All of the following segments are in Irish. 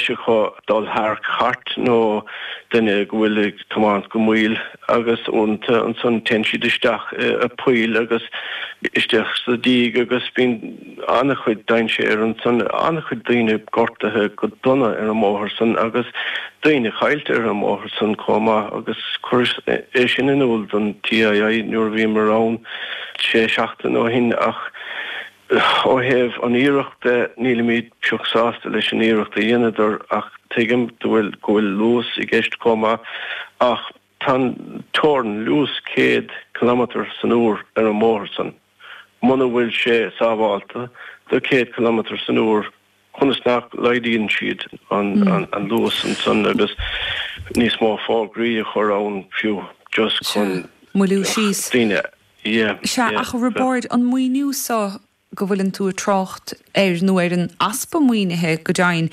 thiocfadh dul thar chairt nó duine go bhfuil ag tiomáint go mall agus uaireanta, ansan téann siad isteach i poill agus isteach sa díog agus bíonn an-chuid dainséir ansan, an-chuid daoine gortaithe go dona ar an mbóthar san agus daoine caillte ar an mbóthar san comh maith agus chuireas é sin in iúl don TII nuair a bhíomar ann sé sheachtain ó shin ach Ó thaobh an iarracht de, nílimid pioc sásta leis an iarracht a dheineadar ach tuigim go bhfuil, go bhfuil luas i gceist chomh maith ach tá an teorann luas céad cileamatar san uair ar an mbóthar san. Muna bhfuil sé sábhálta do céad cileamatar san uair, conas nach laghdaíonn siad an luas ansan agus níos mó fógraí a chur ann fiú just chun moilliú síos daoine. Yeah. Sea, ach Roibeaird, an maoiniú so go bhfuileann tú ag trácht air, nó ar an easpa maoinithe, go dteann,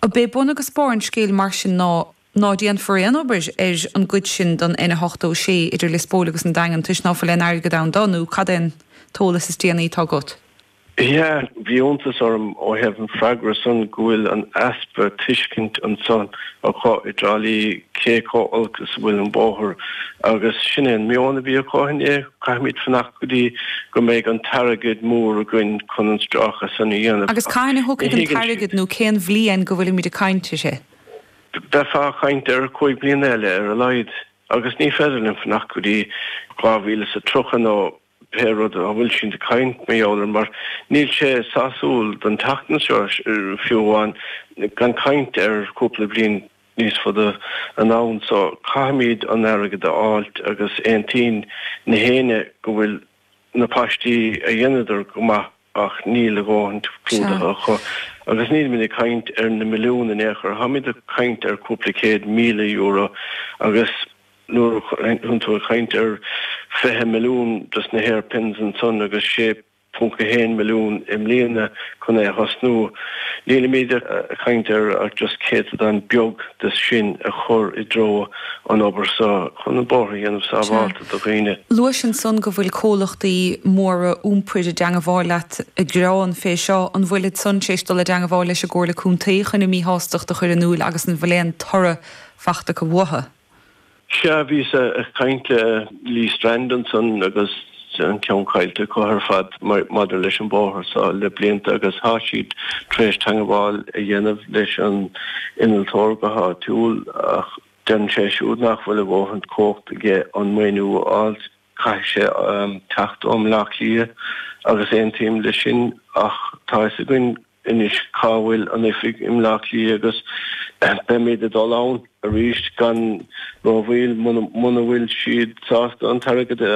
ab é bun agus barr an scéil mar sin ná Ná déanfar aon obair ar an gcuid sin den N86 idir Lios Póil agus an Daingean toisc ná fuil aon airgead ann do, nó cad é an t-eolas is déanaí atá agat? Yeah, bhí iontas orm ó thaobh an freagra san go bhfuil an easpa tuiscint ansan acu i dTrá Lí cé chomh olc is a bhfuil an bóthar agus sin é an meon a bhí acu inné, caithfimid fanacht go dtí go mbeidh an t-airgead mór againn chun an stráice san a dhéanamh. Agus cathain a thiocfaidh an t-airgead nó cén bhliain go bhfuilimid ag caint uirthi? Bheifeá ag caint ar chúig bliana eile ar a laghad agus ní féidir liom fanacht go dtí dhá mhíle is a tríocha nó pé rud a bhfuil siad ag caint mar gheall air mar níl sé sásúil don tseachtain seo fiú amháin gan caint ar chúpla bliain níos fada anonn so caithfimid an airgead a fháilt agus aontaíonn gach éinne go bhfuil na paistí a dheineadar go maith. Ach níl a dhóthain clúdaithe acu. Agus nílimid ag caint ar na milliúin in aon chor, táimid ag caint ar chúpla céad míle euro. Agus nuair a bhíonn tú ag caint ar 20 milliún dos na hairpins ansan agus 6.1 milliún i mbliana chun é a thosnú, nílimid ag caint ar ach just céatadán beag. de sin a chur i dtreo an obair seo chun an bóthar a dhéanamh sábhálta do dhaoine. Luaís ansan go bhfuil comhluchtaí móra iompair i dteangabháil leat ag gearán fé seo, an bhfuilid san tar éis dul i dteangabháil leis an gComhairle Contae chun a míshástacht a chur in iúil agus an bhfuil aon toradh fachta acu uathu? Sea, bhíos ag caint le Lee Strand ansan agus an ceann caillte acu ar fad maidir leis an bhóthar seo le blianta agus tá siad tar éis teagmháil a dhéanamh leis an innealtóir go háitiúil ach deireann sé siúd nach bhfuil a dhóthain cumhacht aige an maoiniú a fháil. Caithfidh sé teacht ó Bhleá Cliath agus aontaím leis sin ach tá fhios againn anois cá bhfuil an oifig i mBleá Cliath agus beimid ag dul ann arís gan rómhoill muna bhfuil siad sásta an t-airgead a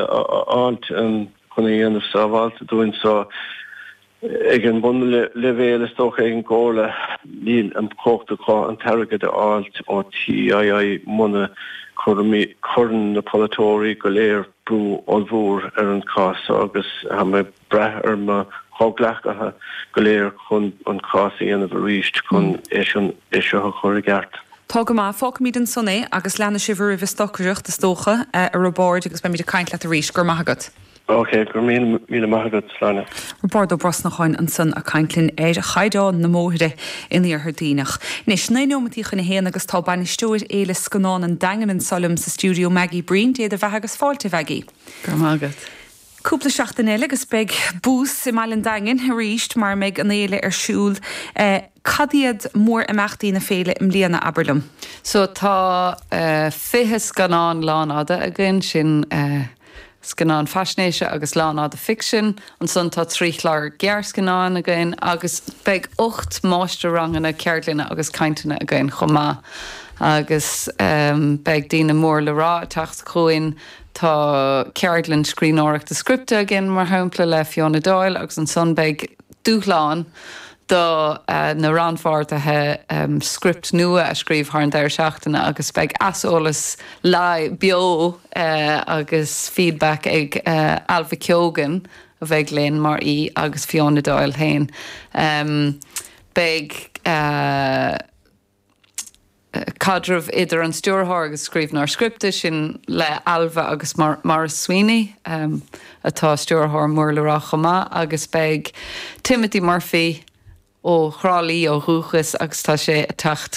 fháilt chun a dhéanamh sábháilte dúinn. So ag an mbunleibhéal is dócha ag an gComhairle níl an chumhacht acu an t-airgead a fháilt ó TII muna cuireann na polaiteoirí go léir brú ollmhór ar an gcás so agus tá mé ag brath ar mo chomhghleacaithe go léir chun an cás a dhéanamh arís chun é seo a chur i gceart. Tá go maith. Fágfaimid ansan é agus leanfaidh sibh oraibh ag stocaireacht, is dócha, a Roibeaird, agus beimid ag caint leat arís. Go raibh maith agat. OK, go raibh míle míle maith agat, a Shláine. Roibeaird Ó Brosnacháin ansan a' caint linn ar chaighdeán na mbóithre in Iarthar Duibhneach. Anois, naoi nóimintí chun a haon agus tá bainisteoir Fhéile Scannán an Daingin anso liom sa stiúideo, Maggie Breen, dé do bheatha agus fáilte, a Mhaggie. Go raibh maith agat. Cúpla seachtain eile agus beidh buzz i mBaile an Daingin arís mar a mbeidh an fhéile ar siúl. Cad iad mór-imeachtaí na féile i mbliana, abair liom? So tá fiche scannán lánfhada againn, sin scannáin faisnéise agus lánfhada ficsin, ansan tá trí chlár gearrscannáin againn agus beidh ocht máistir-ranganna ceardlainne agus cainteanna againn chomh maith agus beidh daoine mór le rá ag teacht chugainn, Tá ceardlann scríbhneoireachta scripte againn, mar shampla, le Fiona Doyle agus ansan beidh dúshlán do na rannpháirtithe script nua a scríobh thar an deireadh seachtaine agus beidh aiseolas live, beo agus feedback ag Ailbhe Keogan a bheidh linn mar aoi agus Fiona Doyle féin. Beidh. caidreamh idir an stiúrthóir agus scríbhneoir scripte, sin le Ailbhe agus Maurice Sweeney, atá stiúrthóir mór le rá chomh maith, agus beidh Timothy Murphy, ó Thrá Lí ó dhúchas agus tá sé ag teacht